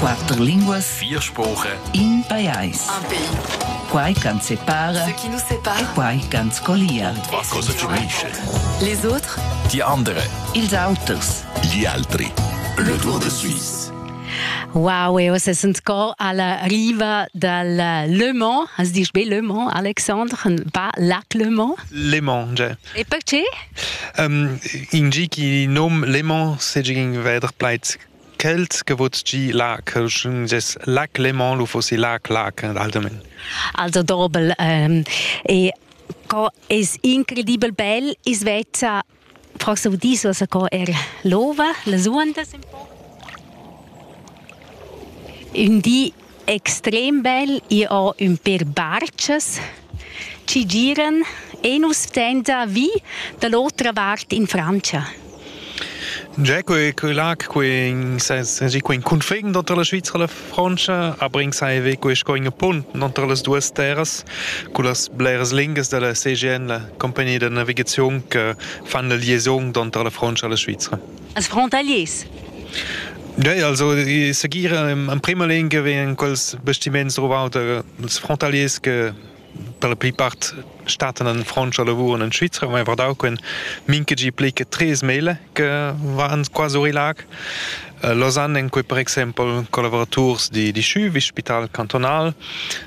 Quatter linguas, vier spurer, in pajais. Un pays. Quai ch'ans separa Ce qui nous sépare. e quai ch'ans collia. Was cosa ci unisce? Les autres, Die andere, ils auters. gli altri. Le Tour de Suisse. Wow, e oz sind sco alla riva dal Le Mans. Has dich be Le Mans, Alexandre, pas Lac Le Mans? Le Mans, cioè. E perche? Um, in gi chi nom Lemon segin veder plaids Kelt che vot gi lac, ges lac Lemon lu fossi lac lac allgemein. Also dobel ähm, e co es incredibel bel is vezza forse vous dis was co er l'ova, la suandas un po. Un di extrem bel ir ho ün pêr barchas chi giran e nu stenda vi da l'otra vart in Frantscha. Già quei quei lac quei sesi quei cunfin d'entre la Svizra e la Frantscha abrin sai ve quei sco in punt d'entre las duas terras cu las bleras linguas della CGN la compagnia de navigaziun che fan la liaison d'entre la Frantscha e la Svizra. Als frontaliers Ja, also ich sugiere in prima Linie wegen quels Bastiments der als frontaliers che per la plipart Staaten an Frontscher lavuren in Schweizer, haben einfach da können Minkegi plicke tres Maile che waren quasi lag. Äh, Lausanne in cui per exempel collaborators di, di Schü, wie Spital Kantonal,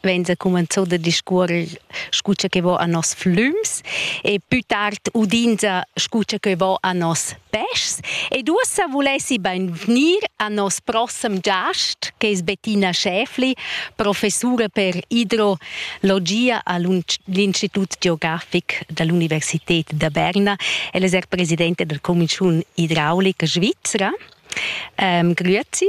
vegn cumenzau da discuorer scu che vo a nos flüms e pü tard udinza scu che vo a nos peschs ed uossa vulessi beinvgnir a nos prossem giast che es Bettina Schäfli, professura per idrologia all'Institut geografic dall'Universität da Berna. Ella es er presidente della Commissiun Idraulica Svizzera. Ähm, grüezi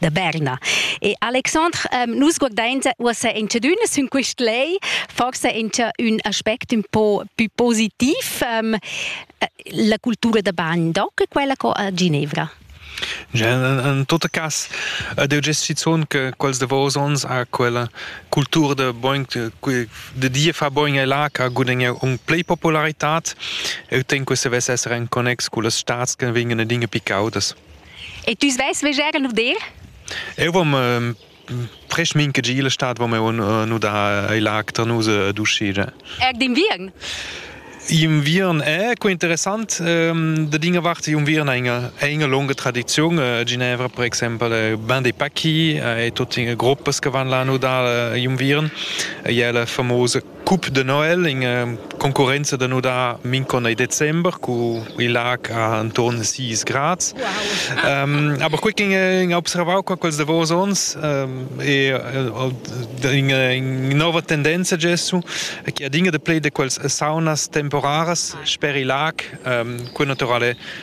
da Berna. E Alexandre, ähm, nus guardains uossa in tschedüna sün quist lei, forse in ün aspect un po più positiv, ähm, la cultura da bagn doc, quella co a Ginevra. In tot cas ed eu gest schizun che quels davos ons a quella cultura da boing de die fa boing e là che gudegna un plei popularità eu ten que se vess esser en connex cu las staats che vengono dinge picaudas. E tu svais veger lur dir? Eu vom ehm, presch mincha gi illa stad vom eu nu da ai lag tar nus ad uscida. Er d'inviern? Inviern è co interessant ehm, da dinga vart inviern è inga, è inga lunga tradiziun a Ginevra per exempel è ben dei pacchi è tutti gruppas che van là nu da inviern è la famosa Cup de Noel in concorrenza da nudar Mincon e December cu il lac anton 6 grads. Um, aber quei in, in observau qua quels davos ons um, e in nova tendenza gessu che adinga de play de quels saunas temporaras sper il lac um, quei naturale